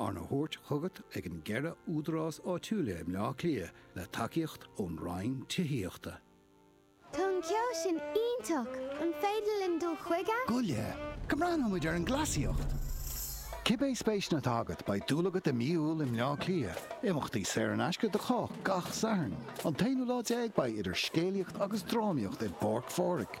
Arna thabhairt chugat ag an gceithre údarás áitiúil i mBleá Cliath le tacaíocht ón Roinn Tithíochta. Tá an ceol sin iontach! An féidir linn dul chuige? Goile! Go mbreathnóidh muid ar an gcleasaíocht! Cibé spéiseanna atá agat, beidh dúil agat i mí Iúil i mBleá Cliath. Imeachtaí saor in aisce do chách gach Satharn. An t-aonú lá déag beidh idir scéalaíocht agus drámaíocht i bPáirc Phádraig.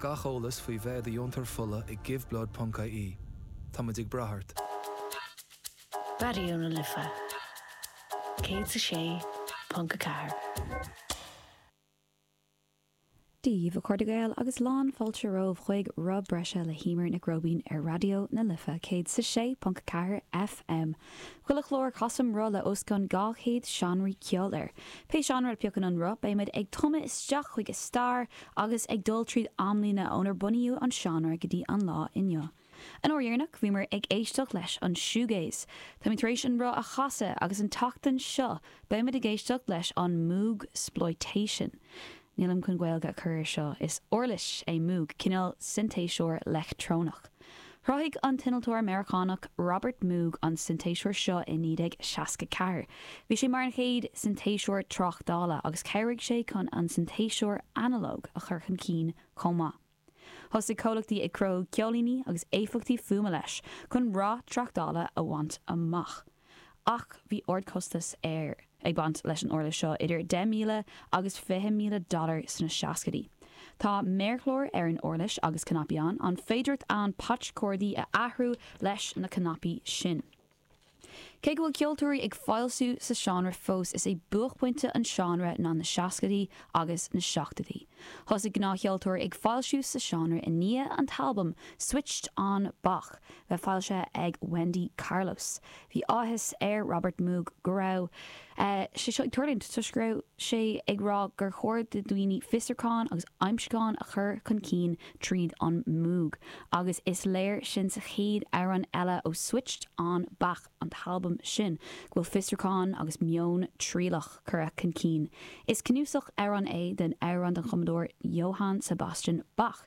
Gach eolas faoi bheith i do dheontóir fola ag giveblood.ie. Táimid ag brath ort. Raidió na Life 106.4. Daoibh a chairde Gael agus lán fáilte romhaibh chuig Roth Breise le hÉimear Nic Róibín ar Raidió na Life 106.4 FM. Chuile chlár casaim roth le os cionn 200 seánraí ceoil air. Pé seánra a phiocann an roth beimid ag tumadh isteach chuig a stair, agus ag dul tríd amlíne ónar bunaíodh an seánra go dtí an lá inniu. An uair dheireanach bhíomar ag éisteacht leis an shoegaze. Táimid tar éis an roth a chasadh agus an tseachtain seo beimid ag éisteacht leis an moogsploitation. Nílim chun Gaeilge a chur ar seo, is uirlis é moog, cineál sintéiseoir leictreonach. Chruthaigh an t-innealtóir Meiriceánach Robert Moog an sintéiseoir seo i 1964. Bhí sé mar an chéad sintéiseoir tráchtála, agus chabhraigh sé chun an sintéiseoir analóg a chur chun cinn chomh maith. Thosaigh comhlachtaí ag cruthú ceoilíní agus éifeachtaí fuaime leis, chun rath tráchtála a bhaint amach. Ach bhí ardchostas ag baint leis an uirlis seo, idir 10,000 agus 20,000 dollar sna seascaidí. Tá méarchlár ar an uirlis agus cnaipí ann, an féidireacht ann patch cordaí a athrú leis na cnaipí sin. Cé go bhfuil ceoltóirí ag foilsiú sa seánra fós, is é buachphointe an seánra ná na seascaidí agus na seachtóidí. Thosaigh gnáthcheoltóirí ag foilsiú sa seánra i ndiaidh an t-albam Switched On Bach, bheith foilsithe ag Wendy Carlos. Bhí áthas ar Robert Moog go raibh sé seo ag tuirlingt toisc go raibh sé ag rá gur chóir do dhaoine fiosrúcháin agus aimsiúcháin a chur chun cinn tríd an Moog agus is léir sin sa chéad amhrán eile ó Switched On Bach an t-albam sin go bhfuil fiosrúcháin agus meon trialach curtha chun cinn. Is cnuasach amhrán é den amhrán den chumadóir Johann Sebastian Bach.